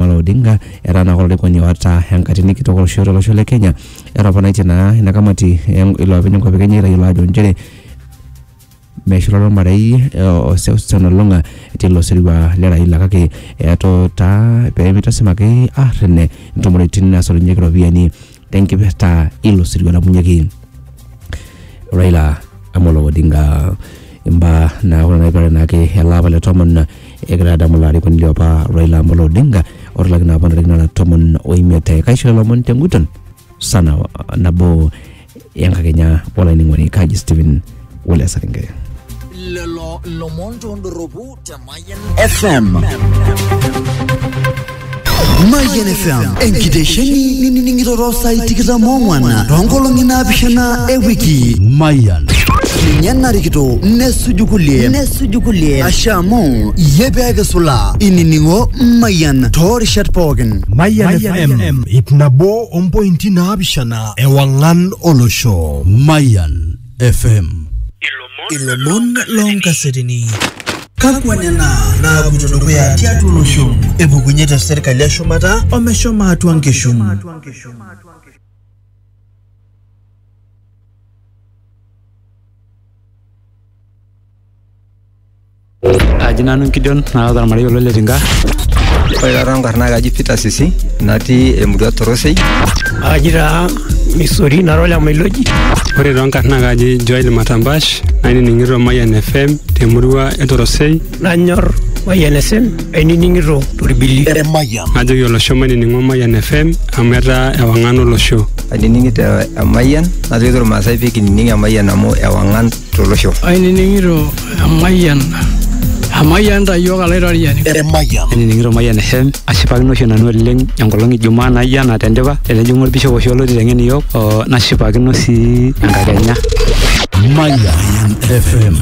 Amolo Odinga etaa naa olarikoni oata enkatini kitok olosho tolosho le Kenya. Etoponaitie naa ina kamati en- iloopeny enkop e Kenya eitayiolo ajo nchere meshulare ormarei eh, o Seusen Olong'a tilo sirua le Raila kake etuutaa pemitasim ake arrene intumoritin nasotunyeki iropiyiani tenkipirta ilo sirua napunyeki Raila Amolo Odinga imbaa naa ore naipirare naake ele apa le tomon egira adamu ilo arikoni liopa Raila Amolo Odinga otalaki naa apa ntarikini nara tomon oimiet kaisho lelo omon tenguton sana nabo enkakenya olainining'oni kaji Stephen wala esari nkeya lelo lomon tondoropu te Mayan FM. Mayian FM enkitesheni ninining'iroro saai tikitam oong'wan toonkolong'i naapishana e wiki. Mayian. Ninye narikito nesuju kulie nesuju kulie ashe amu iyie pee kisulaa inining'o Mayian toorishat pookin. Mayian FM ip nabo ompointi naapishana ewang'an olosho. Mayian. FM. Ilomon loonkasetini. Kakwa nena naapuoito dukuya tiatua olosho? Epukunye te serkali e shumata omeshomo atua nkishu. Aji nanu Gideon naata ormarei olo Letinka. Ore taata enkarna kaji Peter Sisi natii emurua Torosei. Aji taa Misori nara ole Mailoji. Ore too nkarna kaji Joel Matambash nainining'ito Mayian FM temurua e Torosei. Nanyor Mayian FM ainining'ito torbili. Emayian. Najoki olosho mainining'o Mayian FM amu etaa ewang'an olosho. Ainining'ito Emayian najoki irmaasai pee kinining Emayian amu ewang'an tolosho. Ainining'ito emayian emayian ta iyiook alaitoriani. Emayian. Ainining'ito Mayian FM ashipakino oshi nanu oleng enkolong e Jumaa naijo ena tendipa etijing'a olbishop oshi olo oiteng'en iyiook oo nashipakino sii enkakenya. Mayian FM.